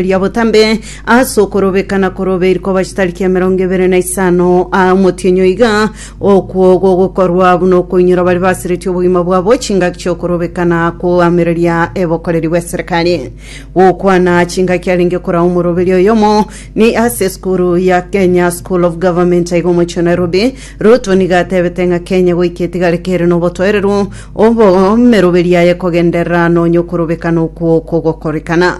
ria botambe ase okorobeka na korobe iri koba chitariki emerongo ebere na isano aa omotienyo iga okwo gogokorwa buna okoinyora bari basiretie obogima bwabo chingaki chi'okorobeka na koamereria ebokoreri bw'eserekari gokwana chingaki arenge korao omoroberi oyomo ni ase esukuru ya kenya school of government aiga omochie wa nairobi ruto niga atebete ng'a kenya goika etigare kere nobotoereru obo omeroberi yaye ekogenderera nonya okorobeka na okwo kogokorekana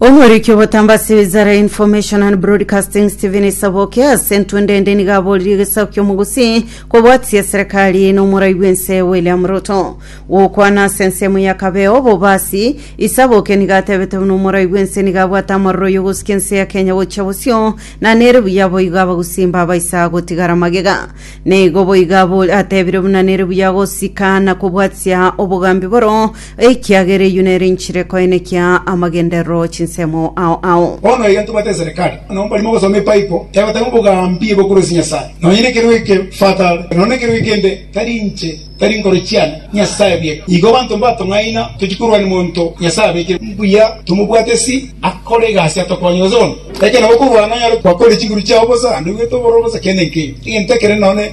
Omoriki obotamba ase wizara ya information and broadcasting Stephen Saboke ase entwe ndende nigo aborire egesaku ki'omogusi kobwatia serikali na omorai bw'ense William Ruto. Gokwana ase ensemo ya Kabeo Bobasi, Isaboke nigo atebete buna omorai bw'ense nigo abwate amaroro y'ogosukia ense ya Kenya gochia bosio na nere buya boigo abagusi mbabaisa gotigara magega. Nigo boigo atebire buna nere buya gosika na kobwatia obogambi boro Ekiagera eyio nere inchire koenekia amagenderero chinsemo ao ao. Bono egento bwate eserekari, onye mbari mogosoma epaipo egoteba obogambi bokorosia Nyasae, nonye nekero eke father nonya nekero ekende, tari inche, tari nkoro chiane, Nyasae bwe. Igo abanto mbatong'aina tochie korwa nemonto Nyasae abekire. Mbuya tomobwate si akore egasi atokonye gose bono. Ekero nabo okorwana nonyare gwakorire chinguru chiao bosa naende ogwete oboro bosa kende nkeiyo, egento ekere none.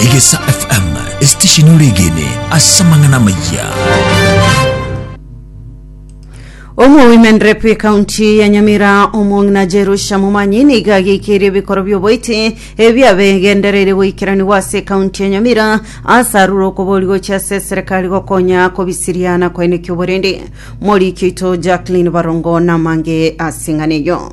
Egesa FM, esitesheni ore egene ase amang'ana amayia. Omwa Women Rep ekaunti ya Nyamira omong'ina Jerusha Mumanyi niga ageikirie ebikoro bioboiti ebiabegendereire goikeranigwa ase ekaunti ya Nyamira ase arure okobori gochia ase eserekari gokonya kobisiria na koenekia oborende. Moriki oito Jacqueline Barongo namange ase eng'ana eyo.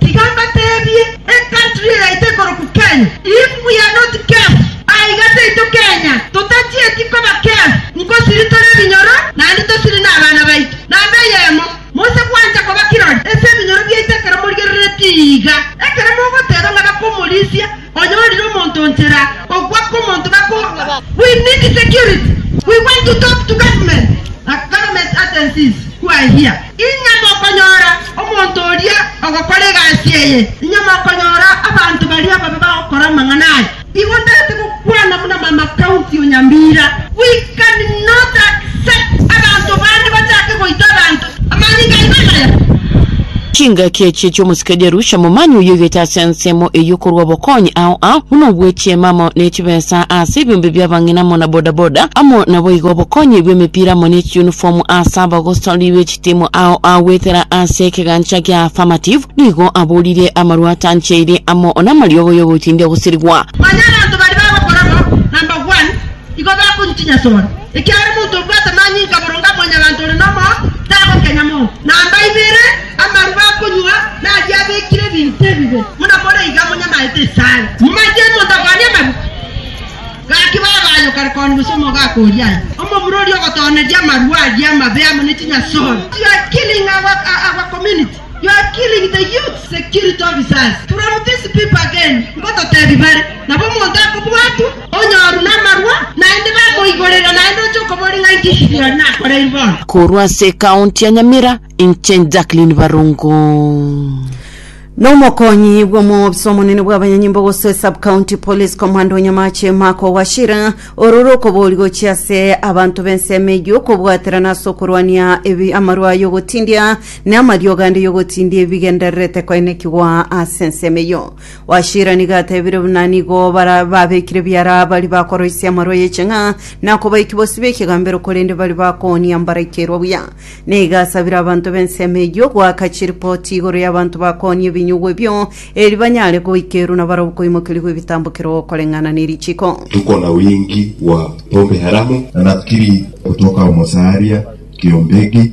Tiga mbateebie, ecountry eyaito ekorokwa Kenya, if we are not careful, aiga taito Kenya, totachieti koba careful, nkosiri tore ebinyoro, naende tosiri nabana baito. Namba eyemo, mose gwancha koba kirori ase ebinyoro biaito ekero morigereretie iga, ekero mogoteeba ng'a bakomorisia, Oyorire omonto nchera okwa komonto bakorwa we need security we want to talk to government and government agencies who are here Inya mokonyora omonto oria ogokora egasi eye Inya mokonyora abanto baria babe bagokora amang'ana aya Igo ntarete gokwana buna mama county o Nyamira We Can not accept abanto bande bachake goita abanto amanyinga aino amaya. Chingaki echi echi'omosike Jerusha, momani oyio oigete ase ensemo eyio korwa obokonyi ao ao, buna obwe chiema amo ne chibesa ase ebiombe bia abang'ina amo na boda boda, amo nabo igo obokonyi bwe emepira amo ne chiunifomu ase abagosori be chitimu ao ao goetera ase ekegancha kia Affirmative, nigo aborire amarwa atancheire amo namariogo yogotindia gosirigwa. Onye abanto baria bagokora bo, number one, Igo bakontinya sore, ekiagera omonto obwate amanyinga boronge a mwanyabanto ore nomoyo tagokenya monto. Na mbaibere amaru bakonywa naria abekire ebinto ebibe, buna more iga monyamaete esare. Momanyete omonto akwane amaru? Gaki baba aye okarekoni gose omoga akoria aye. Omomura oria ogotooneria amaru aria amabe amo ne chinyasore. You are killing the youth security officers from this people again ngototebi bare nabo omonto akobwatwa onyoru namarwa naende bamoigorera naende oche okobori ng'a inki Gideon nakoreiri bono. Korwa ase ekaunti ya Nyamira, inche Jacqueline Barungu. Nomokonyi bw'omobisa omonene bw'abanyanyimbo gose esub-county police commander Onyamache Mark Owashira ororo okobori gochia ase abanto b'ensemo eyio okobwaterana ase okorwania ebi amarwa y'ogotindia Ne amariogo ande yogotindia ebi bigendererete koenekigwa ase ensemo eyio. Washira nigo atebire buna nigo bara babekire biara bari bakoroisia amarwa y'eching'a na kobaiki bosio b'ekegambero korende bari bakoonia mbaraikerwa buya. Ne iga asabire abanto b'ensemo eyio goaka chiripoti igoro y'abanto bakoonia ebinyugwa ebio, eri banyare goikerwa na barabwo koimokerigwa ebitambokero koreng'ana ne richiko. Tuko na wingi bwa pombe haramu. Nakiri gotoka omosaria kiombegi.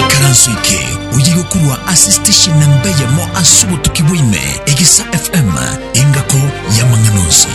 Ikaranso eke oye gokorwa ase station namba eyemo ase obotuki bwaime, Egesa FM, engako y'amang'ana onsi.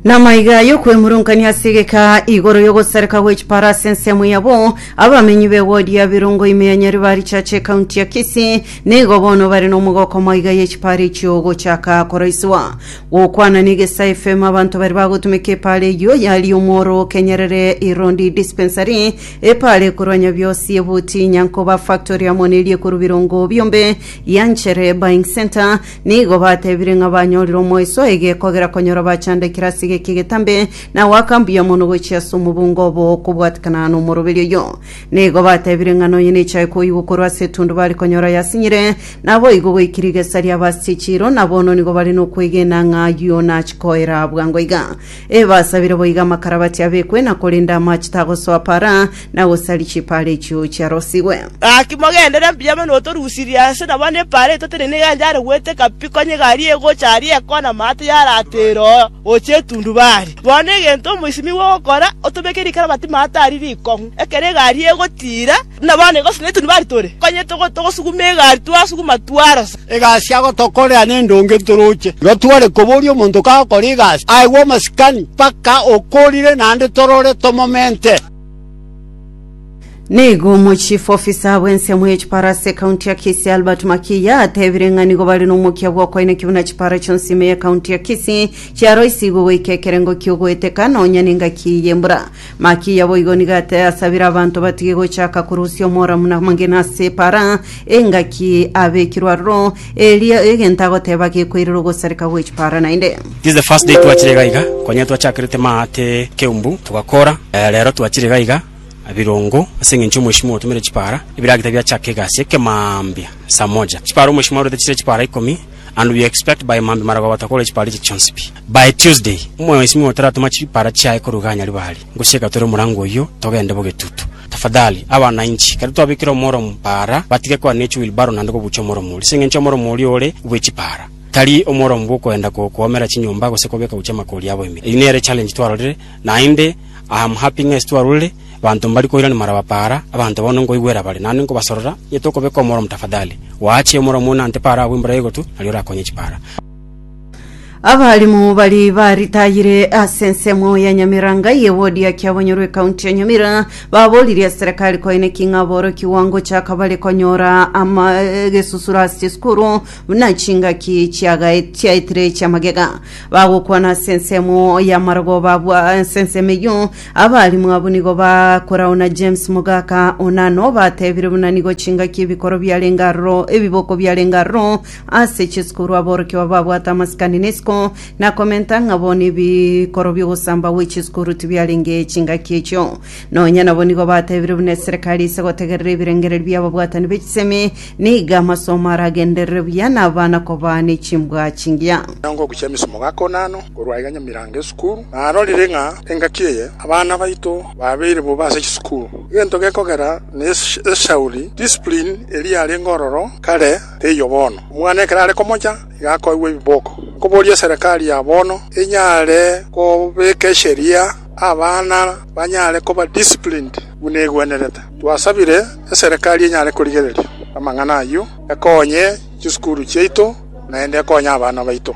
Namaiga yokwemurungania ase egeka igoro yogosareka gwe chipara ase ensemo yabo abamenyi be wodi ya Birongo ime ya Nyaribari Church ekaunti ya Kisii nigo bono bare nomogoko maiga ye chipara echio gochaka koroisiwa Gokwana negesa efemo abanto baria bagotumeka epaara eyio yaria omworo o Kenyerere Irondi Dispensary, epaara ekorwa nyabiosi ebuti Nyankoba Factory amo neria ekorwa Birongo Biombe ya Nchere Buying Centre. Nigo batebire ng'a banyorire omoiso egekogera konyora bachandekire ase egeki egetambe na goaka mbuya mono gochia ase omobunga obo okobwatekana nomoroberio oyio. Nigo batebire ng'a nonya nechae koigwa korwa ase etundu bare konyora yasinyire, naboigo goikire igesa ria Vasti chiiro, na bono nigo bare nokwegena ng'a ayio nachikoera bwango iga. Ee, basabire boiga amakarabati abekwe, na korende amache tagosoa para, na gosari chipaara echio chiarosigwe. Gaki mogendere mbuya mono otorusirie ase nabo na epaara etotenene egento yare goeteka pi, konya egari egocha aria ekona amaato yarateera oo gochia etundu bare. Bono egento omoisimi gwogokora, otobeke rikara amatima atari rikong'u, ekero egari egotiira, buna bono igo sinye tonibari tore, onye togosuguma egari twasuguma twarosa. Egasi agotokorera nendonge ntoroche. Igo tware koboria omonto kagokora egasi aegwe omasikani mpaka okorire naende torore tomomente. Nigo omochief officer bw'ensemo ye chipara ase ekaunti ya Kisii Albert Makiya atebire ng'a nigo bare nomokia bw'okoineki buna chipara chionsi ime y'ekaunti ya Kisii chiaroisigwe goika ekerengo ki'ogoeteka nonya n'engaki y'embura. Makiya boigo nigo ate asabire abanto batige gochaka korusia omora buna amagena ase epara engaki abekirwe aroro Erio egento agoteba gekoirera ogosareka gw'echipara naende. This is the first day twachire iga iga konya twachakerete maate keumbu togakora eh, rero twachire iga iga birungu ase eng'encho omweshimiwa otumire chipara ebiragita biachake egasi ekemambia saa moja chipara omweshimiwa arorete chire chipara ikomi and we expect by mambia maragoba takore chipara eche chionsi pi by tuesday omweshimiwa otaratoma chipara chiaye korwa iga anyari bari Ngochie gatore omorango oyio, togende b'ogetutu. Tafadhali, abananchi, kare twabekire omoromo paara, batige koa ne chiwilbaro naende kobuucha omoromo oria, ase engencho omoromo oria ore bwe chipaara. Tari omoromo bw'okoenda ko koomera chinyomba gose kobeka gochia amakoori abo emere. Eyio nere challenge twarorire, naende I am happy ng'a ase twarorire abanto mbari koirania marawa paara, abanto bono nkoigwera bare, naende nkobasorora onye tokobeka omoromo tafadhali. Goacha omoromo oyo nante paara agwo embura ya egotu, nario orakonye chipaara. Abalimu bari baritayire ase ensemo ya Nyamiranga ye wodi ya Kiabonyorwa ekaunti ya Nyamira baboririe serikali koine ki ng'a borokigwa ngochaka bare konyora ama gesusuro ase chisukuru buna chingaki chiagae- chiaetire chia magega bagokwana ase ensemo ya marogo babwa ase ensemo eyio abalimu abwo nigo bakorao na James Mogaka Onano batebire buna nigo chingaki ebikoro biarenge aroro ebiboko biarenge aroro Ase chisukuru aborokigwa babwate amasikani na isiko, na komenta ng'a bo nebikoro bi'ogosamba gwe chisukuru tibiarenge chingaki echio. Nonya nabo nigo batebire buna eserekari ise gotegerera ebirengererio bi'ababwatani be chisemi, nigo amasomo aragenderere buya na abana kobaa ne chimbwa chingiya. Nyongo gochia emisomo gaka one ano korwa aiga nyamirango esukuru, narorire ng'a engaki eye abana baito babeire bobe ase chisukuru. Egento gekogera na eshauri, discipline, eria yarenge ororo kare. Teiyo bono. Omwana ekero are komocha, iga akoigwa ebiboko. Nkoboria eserekari ya bono enyare kobeka esheria abana banyare koba disciplined buna egwenerete. Twasabire eserekari enyare korigereria amang'ana ayio, ekonye chisukuru chiaito naende ekonye abana baito.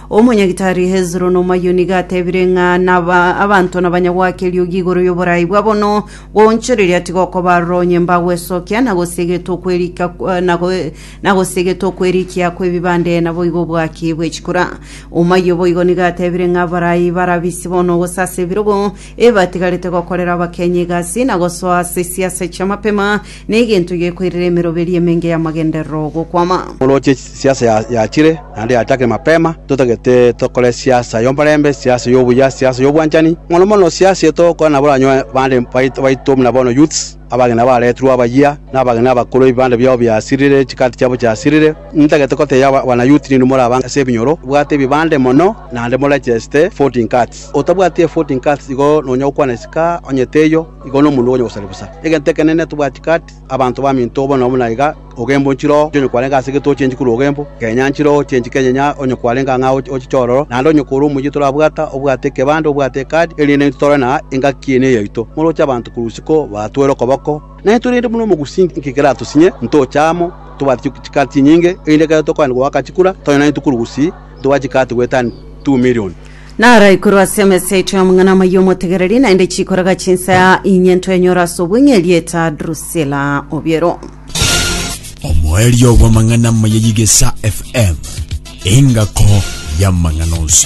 Omonyagitari Hezro nomoyio nigo atebire ng'a naba abanto nabanyagwake eriogi igoro y'oboraai bwa bono, goonchoreria tigokoba aroro onye mbagwesokia, na gose egete okwerika eh, na go- na gose egete okwerikia kw'ebibande naboigo obwaki bwe chikura. Omoyio boigo nigo atebire ng'a abarai barabisi bono gose ase ebirogo ebatigarete gokorera abakenyi egasi, na gosoa ase siasa chi'amapema, Negento gekoirera emeroberi emenge y'amagenderero 'ogokwama. Oroche siasa ya- yachire, naende yachakire mapema, totagete tokore siasa y'omorembe, siasa y'obuya, siasa y'obwanchani, mono mono siasa eye togokora nabo baranyoe bande bait- baito buna bono youths, abageni abaretirwe abayia, na abageni abakoro ebibande biabo biasirire, chikaati chiabo chiasirire. Ntagete goteebia aba- abana youth nini moraba ase ebinyoro, bwate ebibande mono, naende moregeste voting cards. Otabwati evoting cards igo nonya gokwana esika onye teiyo. Igo nomonto ogocha gosaria bosa. Egento ekenene tobwati kati abanto baminto obo nobo naiga ogembo nchire oo onye kwarenge ase egete ochenchi korwa ogembo, kenya nchire oo ochenchi kenye nya onye kwarenge ang'e aa oche chiororo, naende onye kore omoyio torabwata, obwate ekebande, obwate ekadi, erinde naintwe tore na engaki eye neyaito. Moroche abanto korwa isiko batwere okoboko, naintwe rende buna omogusi inki keratosinye, ntoche amo, tobwate chikati chinyinge, erinde ekero tokoenda goaka chikura, tonye naintwe korwa gusii ntobwate chikati goetania two million. Naraikorwe ase emesa yaito y'omong'ana omoyia omotegereri, naende chikoraga chinsaya inye ntwenyore ase obweng'e erieta Drusila obiero. Omoerio bw'amang'ana maya y'Egesa FM, engako y'amang'ana onsi.